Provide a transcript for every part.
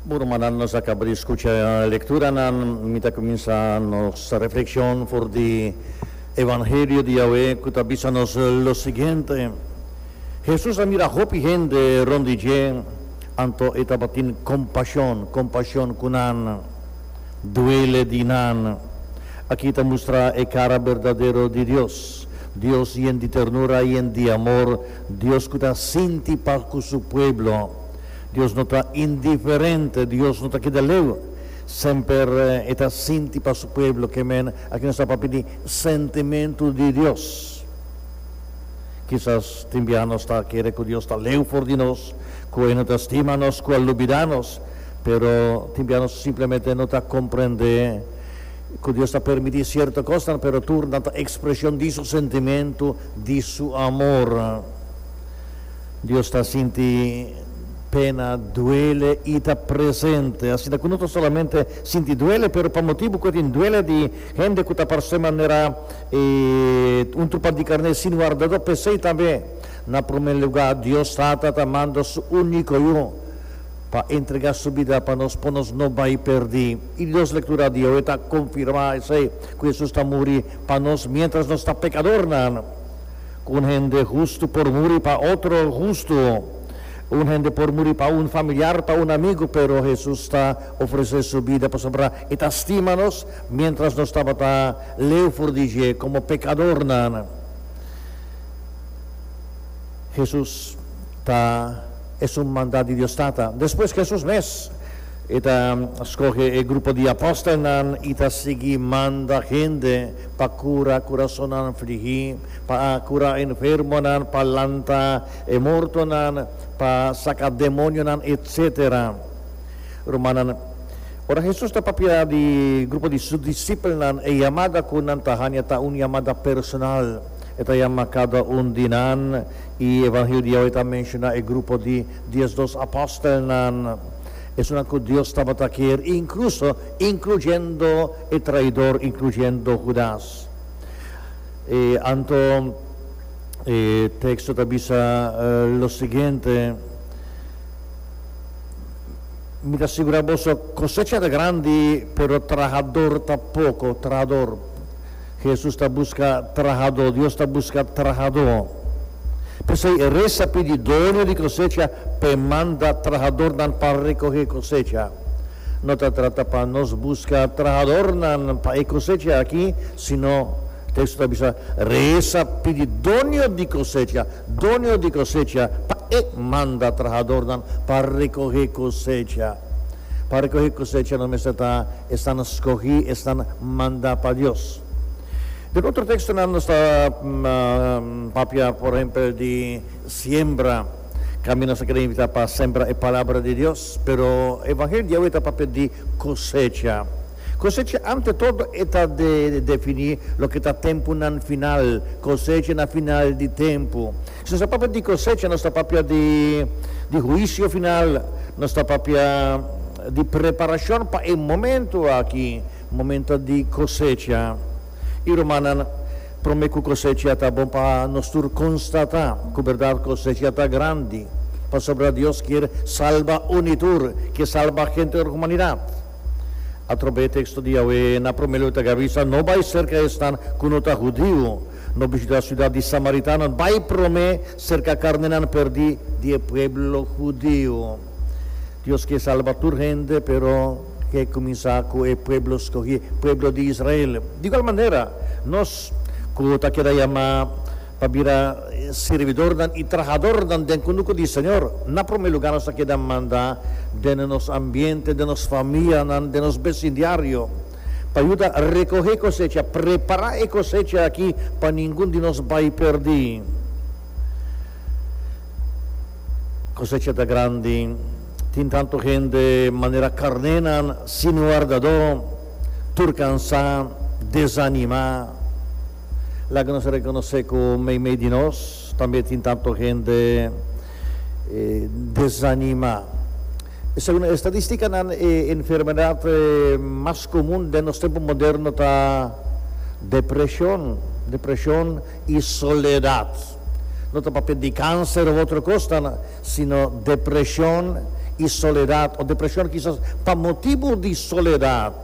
Bo rumannan, nos a caba di scucha e lecturanan. Mi ta cuminsa nos reflexion for di Evangelio di Yahweh cu ta bisa nos lo siguiente, Jesus a mira hopi hende rond di dje, anto e tabatin compasion, compasion cu nan, duele di nan. Aki ta mustra e cara berdadero di Dios, Dios yen di ternura, yen di amor. Dios cu ta sinti pa cu su pueblo. Dios no ta indiferente, Dios no ta keda leu. Semper e ta sinti pa su pueblo. Ke men aki nos ta papia di sentimentu di Dios. Kisas tin biaha nos ta kere cu Dios ta leu for di nos, cu e no ta stima nos, cu a lubida nos. Pero tin biaha nos simplemente no ta comprende cu Dios ta permiti cierto cosnan, pero tur nan ta expresion di su sentimentu di su amor. Dios ta sinti pena, duele i ta presente. Asinta ku no ta solamente sinti duele, pero pa motibu ku e tin duele di hende ku ta parse manera e un trupa di karné sin wardadó, p'esei tambe, na promé lugá, Dios Tata ta manda su úniko Yu pa entregá su bida pa nos, pa nos no bai pèrdí. I di dos lektura di awe ta konfirmá esei, ku Hesus ta muri pa nos miéntras nos ta pekadornan. Ku un hende hustu por muri pa otro hustu. Un hende por muri pa un familiar, pa un amigu, pero Hesus ta ofresé su bida pasobra e ta stima nos miéntras nos tabata leu for di dje komo pekadornan. Hesus ta. Esun mandat di Dios Tata. Despues Jesús mes, e ta scoge e grupo di apostelnan i ta sigui manda hende pa cura curasonnan fligi, pa cura enfermonan, pa lanta e mortonan, pa saca demonionan, etc. Rumannan, ora Jesús ta papia di grupo di su disipelnan, e yamada cu nan ta hanja ta un yamada personal. E ta yama cada un di nan. E Evangelio di awe ta menshoná e grupo di Dies Dos Apòstelnan, esunnan ku Dios tabata kier inkluso inkluyendo e traidor, inkluyendo Hudas. E anto e teksto ta bisa lo siguiente, Mi ta sigurá boso, kosecha ta grandi, pero trahador ta poko, trahador. Hesus ta buska trahadó, Dios ta buska trahadó. P'esei e rei sa pidi doño di kosecha pa e manda trahadornan pa rekohé kosecha. No ta trata pa nos buska trahadornan pa e kosecha aki, sino teksto ta bisa, rei sa pidi doño di kosecha, doño di kosecha, pa e manda trahadornan pa rekohé kosecha. Pa recohi cosecha no mester ta esnan scogi, esnan manda pa Dios. Den otro textonan nos ta papia, por ehempel, di siembra. Scambi nos ta kere invita pa sembra e palabra di Dios, pero e Evangelio awe ta papia di cosecha. Cosecha ante todo e ta defini loke ta temponan final, cosecha na final di tempo. Si nos ta papia di kosecha, nos ta papia di di huisio final, nos ta papia di preparashon pa e momentu aki, momento di kosecha. I rumannan, promé ku kosecha ta bon pa nos tur konstatá ku bèrdat kosecha ta grandi, pasobra Dios kier salba uni tur, kier salba henter di humanidat. Atrobé e teksto di Yahweh na promé luta ke a bisa, No bai serka esnan ku no ta hudiu. No bishitá siudat di samaritanonan bai promé serka karnenan pèrdí di e pueblo hudiu. Dios ke salba tur hende, pero ke kuminsá ku e pueblo skohí, pueblo di Israel. Di igual manera, nos ku ta keda yamá pa bira sirbidornan i trahadornan den kunuku di Señor, na promé lugá nos ta keda mandá den nos ambiente, den nos famianan, den nos besin diario. pa yuda recohe e cosecha, prepara e cosecha aki pa ningun di nos bay perdi. Cosecha ta grandi, tin tanto hende manera carnenan sin wardado, tur cansa, desanima. Laga nos reconoce cu meimei di nos tambe tin tanto hende desanima. Segun e estadístikanan, e enfermedat mas komun den nos tempu moderno ta depreshon, depreshon i soledat. No ta papia di kanser òf otro kos, ta na, sino depreshon i soledat, o depreshon kisas pa motibu di soledat.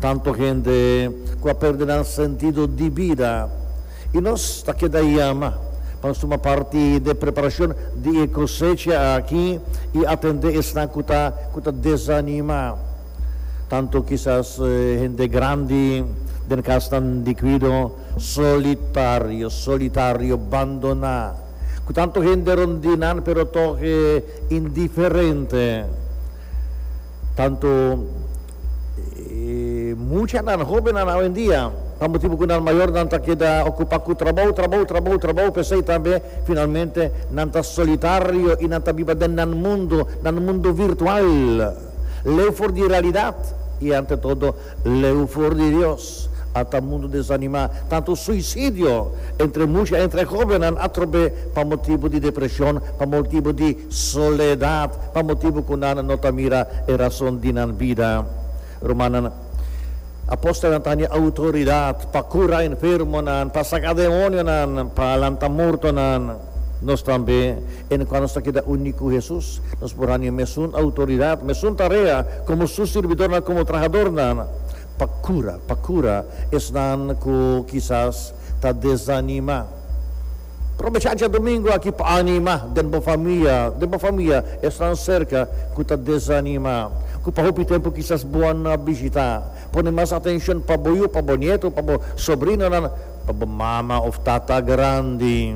Tantu hende ku a pèrdè nan sentido di bida. I nos ta keda yama pa nos tuma parti den preparashon di e kosecha aki i atendé esnan ku ta ku ta desanimá, tantu kisas hende grandi den kasnan di kuido, solitario, solitario, bandoná, ku tantu hende rond di nan pero tòg indiferente, tantu. E muchanan, hóbennan awendia, pa motibu ku nan mayornan ta keda okupá ku trabou, trabou, trabou, trabou, p'esei tambe finalmente nan ta solitario i nan ta biba den nan mundu, nan mundu virtual, leu for di realidat i ante todo leu for di Dios. Ata mundu desanimá. Tantu suisidio entre musha, entre hóbennan a trob'é pa motibu di depreshon, pa motibu di soledat, pa motibu ku nan no ta mira e rason di nan bida. Rumannan, apòstelnan ta handi outoridat pa kura enfermonan, pa saka demonionan, pa lanta mortonan. Nos tambe, en kua nos ta keda uní ku Hesus, nos por handi e mesun outoridat, mesun tarea komo su sirbidornan, komo trahadornan. Pa cura, pa cura esnan cu kisas ta desanima. Probecha djadomingo aki pa anima den bo famia, den bo famia esnan cerca cu ta desanima, cu pa hopi tempo kisas bo a na bishita. Pone mas atencion pa bo yu, pa bo nieto, pa bo sobrinonan, pa bo mama of tata grandi,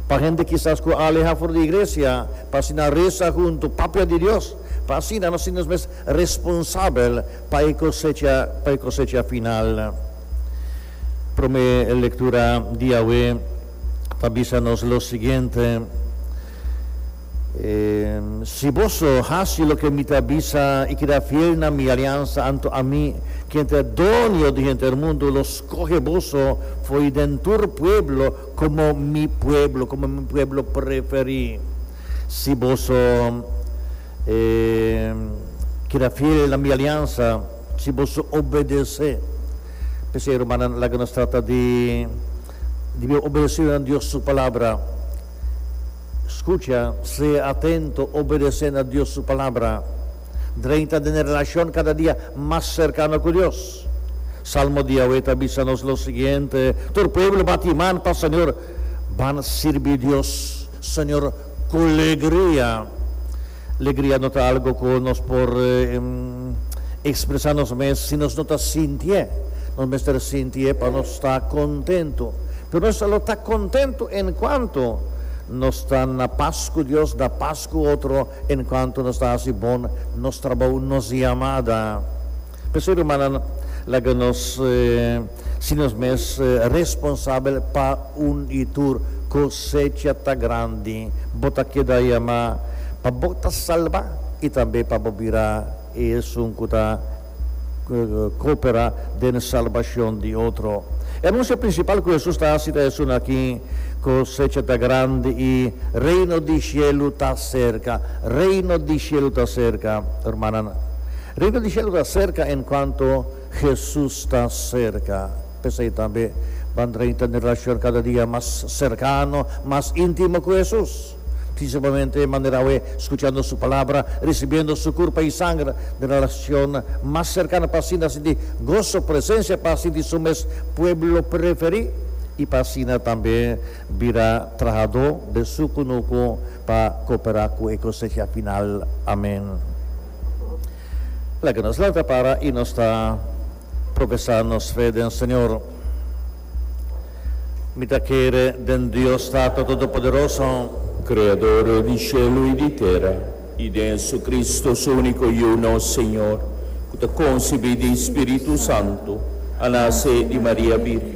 pa hende kisas cu a aleha for di iglesia, pa asina reza hunto, papia di Dios, pa asina nos sinti nos mes responsabel. Pa e cosecha, pa e cosecha final. Prome lectura di awe ta bisa nos lo siguiente, Si boso haci loke mi ta bisa i keda fiel na mi aliansa, anto ami, ken ta e Doño di henter mundu, lo scoge boso fo'i den tur pueblo como mi pueblo, como mi pueblo preferi. Si boso. E keda fiel na mi aliansa si bo su obedesé. P'esei, rumannan, laga nos trata di di bira obedesidu na Dios su Palabra. Skucha, sea atento, obedesé na Dios su Palabra drenta den e relashon kada dia mas serkano ku Dios. Salmo di Yahweh ta bisa nos lo siguiente, Tur pueblo bati man pa Señor, Ban sirbi Dios. Señor Colegria. Legria no ta algo cu nos por expresa nos mes si nos no ta sinti'e. Nos mester sinti'e pa nos ta contento. Pero nos ta lo ta contento en cuanto nos ta na pas cu Dios, na pas cu otro, en cuanto nos ta haci bon nos trabou, nos yamada. P'esei, rumannan, laga nos si nos mes responsabel pa un i tur. Kosecha ta grandi, bo ta keda yamá pa bo ta salba i tambe pa bo bira e esun ku ta koperá den salbashon di otro. E anunsia prinsipal ku Hesus ta hasi ta esun aki, Kosecha ta grandi i Reino di shelu ta serka. Reino di shelu ta serka, rumannan. Riba di shelu ta serka enkuanto Hesus ta serka. P'esei tambe bo a drenta den e relashon kada dia mas serkano, mas intimo ku Hesus, prinsipalmente manera awe skuchando Su Palabra, risibiendo Su Kurpa i Sanger den relashon mas serkano pa asina sinti goso presensia, pa sinti Su mes pueblo preferí i pa asina tambe bira trahadó besukunuku pa koperá ku e kosecha final. Amen. Laga nos lanta para i nos ta profesá nos fe den Señor. Mi ta kere den Dios Tato Todopoderoso. Creador di shelu i di tera, i den Jesucristo, Su único Yu, nos Señor, cu ta concebí di Spiritu Santu, a nace di Maria Bírgen.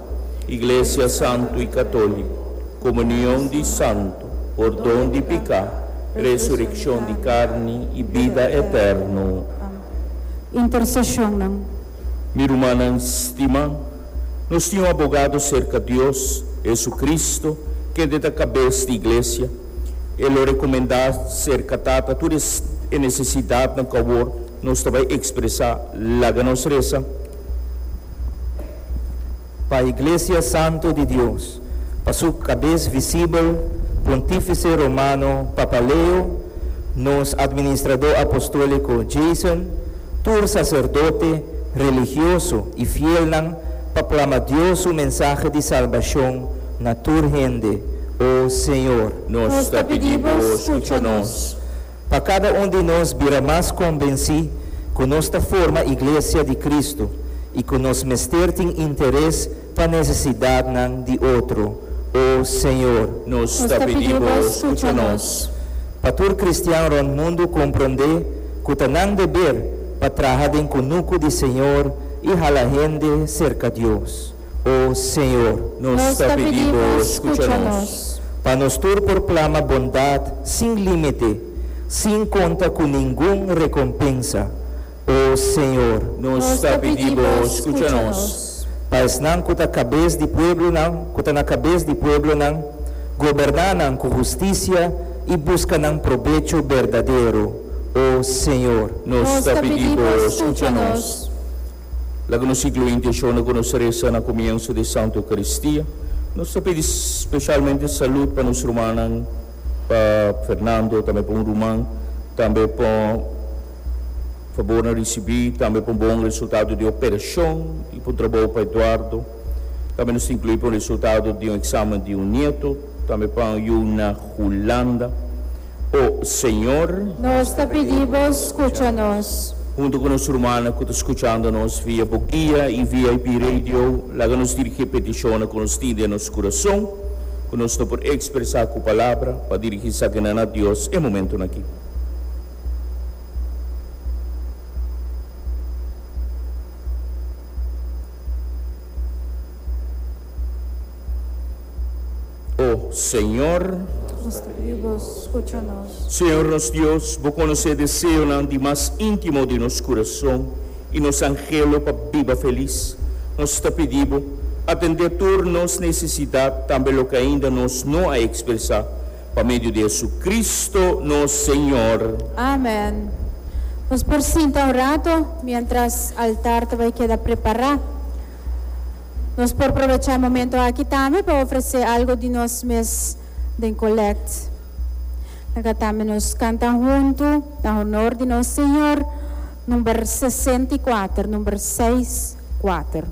Iglesia santu i katóliku, komunion di santu, pordon di piká, resurekshon di karni i bida eterno. Amen. Interseshonnan. Mi rumannan stimá, nos tin un abogado serka Dios, JesuCristo, kende ta Kabes di Iglesia. E lo rekomendá serka Tata tur e nesesidatnan ku awor nos ta bai ekspresá. Laga nos resa. Pa Iglesia Santu di Dios, pa su Cabes Visibel, Pontifice Romano Papa Leo, nos Administrador Apostolico Jason, tur sacerdote, religioso y fielnan pa plama Dios su mensahe di salbacion na tur hende, O Señor. Nos ta pidi Bo scucha nos. pa kada un di nos bira mas kombensí ku nos ta forma Iglesia di Kristu i ku nos mester tin interes pa nesesidatnan di otro. O Señor! Nos ta pidi Bo skucha nos. Pa tur kristian rònt mundu komprondé ku ta nan deber pa traha den kunuku di Señor i hala hende serka Dios. O Señor, nos ta pidi Bo scucha nos, pa nos tur por plama bondad sin limite, sin conta cu ningun recompensa. O Señor. Nos ta pidi Bo scucha nos, pa esnan cu ta cabez di pueblonan, cu ta na cabez di pueblonan, goberna nan cu husticia y busca nan probecho berdadero. O Señor. Nos ta pidi Bo scucha nos. Laga nos siglo inti e shona ku nos resa na komienso di e Santu Eukaristia. Nos ta pidi speshalmente salud pa nos rumannan, pa Fernando, tambe pa un ruman, tambe pa fabor na risibí, tambe pa un bon resultado di e operashon i pa un trabou pa Eduardo. Tambe nos ta inkluí pa un resultado di un eksamen di un nieto. Tambe pa un yu na Hulanda. O Señor, nos ta pidi Bo skucha nos. Huntu ku nos rumannan ku ta skuchando nos via Bo Guia i VIP Radio, laga nos dirigí e petishonnan ku nos tin den nos kurason, ku nos no por ekspresá ku palabra, pa dirigí esakina na Dios e momentunan akí. O Señor. Nos ta pidi Bo scucha nos. Señor nos Dios, Bo conoce e deseonan di mas intimo di nos curason y nos angelo pa biba feliz. Nos ta pidi Bo, atende tur nos necesidad, tambe loke ainda nos no a expresa, pa medio di Jesucristo nos Señor. Amen. Nos por sinta un rato mientras altar ta bay keda prepara. Nos por probechá momentu aki tambe pa ofresé algu di nos mes den kolèkt. Laga tambe nos kanta huntu na honor di nos Señor, number sesenta i kuater, number seis, kuater.